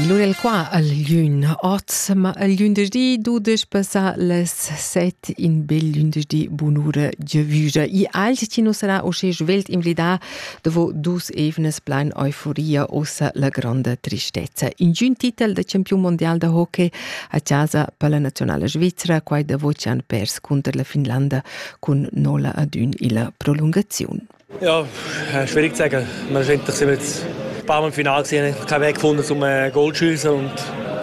L'ura il qua al gliun oz, ma al lünderdi dudesch passa las set in bel lünderdi bunura giavüja. I alt chi nu sarà usché svelt invlidà dovo dus evnas plain euforia ossa la granda tristezza. In giun titel da champiun mondial da hockey a chasa per la nazionala svizzera, quai da Vocian pers cunter la Finlanda cun nola ad ün illa prolungaziun. Ja, schwierig zu sagen. Wir sind jetzt ein paar Mal im Finale gesehen, keinen Weg gefunden, um äh, Goal zu schießen und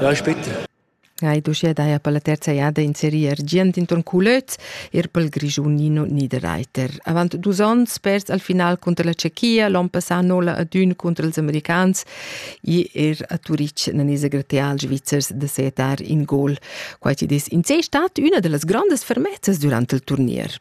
ja, ist bitter. Hai uschia daja per la terza jada in serie argient intorn Culöz, er pel Grischunino Niederreiter. Avant dus onns pers al final conter la Tschechia, l'on passà nola ad ün conter els americans e er a Turic nan es gratial svizzers da setar in goal. Quai ci des in sé stat üna da las grandes fermezzas durant il turnier.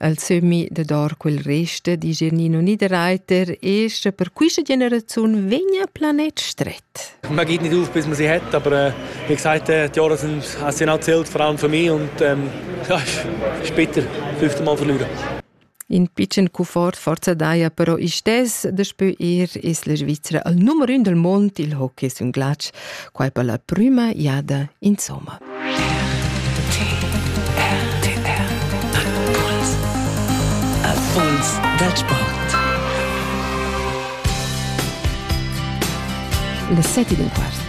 al sömmi da dor quel reste di Genino Niederreiter e sche per quista generazione vegna planet stret. Man geht nicht auf, bis man sie hat, aber äh, wie gesagt, äh, die Jahre sind, haben sie nicht zählt, vor allem für mich und ähm, ja, ist bitter, fünfte Mal verlieren. In piccen cufort forza daia però istes da spö er es la Svizzera al numero un del mond il hockey sun glatsch quai per la prüma jada insomma. Erfolgs Wettsport. Le sette d'un quart.